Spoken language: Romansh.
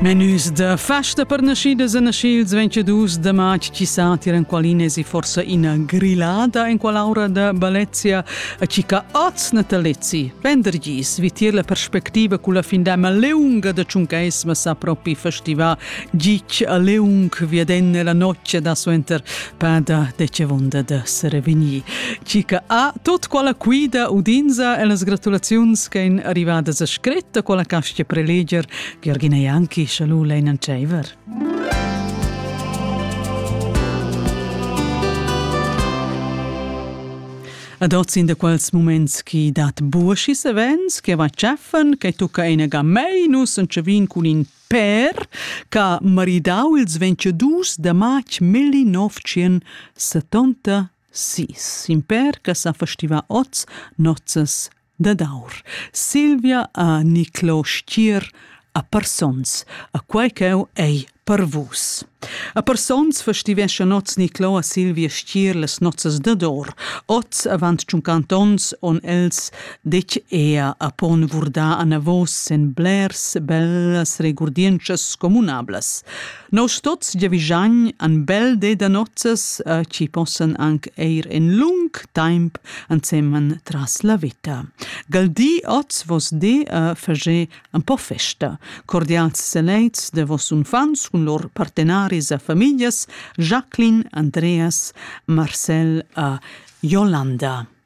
Menüs da festa per naschidas e naschils vencedus da matg chi sa tiran qualines e forsa ina grillada in quell'aura da Balezia a chi ca oz natalezi. Vendergis vitier la perspectiva culla findama leunga da Tschunqueis ma sa propi festivà gic a leung viaden la noccia da suenter pada decevonda da Serevigni. Chi ca ha tot quella quida udinza e las gratulaziuns che in arrivadas a scretta quella castia preleger Georgina Janki, Chalu Leinen Tscheiver. Ad oz in da quels moments chi dat buochi savens, che va tschaffen, che tucca enaga mei, nus en chavin cun in per ch'ha maridau ils 22 da matg 1976. In per che sa festiva oz nozzas dad aur. Silvia ha Niclò Stier a Parsons, a quai ch'eu ei per vus. A Parsons festivescha noz Niclò a Silvia Stier las nozzas dad or. Oz, avant tschunquant ons, on els dec ea a pon vurdar anavos sen blers bellas regurdientschas communablas. Nos tots giavigagn an bel de da nozzas, eh, ci possan anc eir in lung temp ansemen tras la vita. Galdi oz vos de a fager un po festa. Cordials seleits de vos unfants cun lor partenaris a familias Jacqueline, Andreas, Marcel a Yolanda.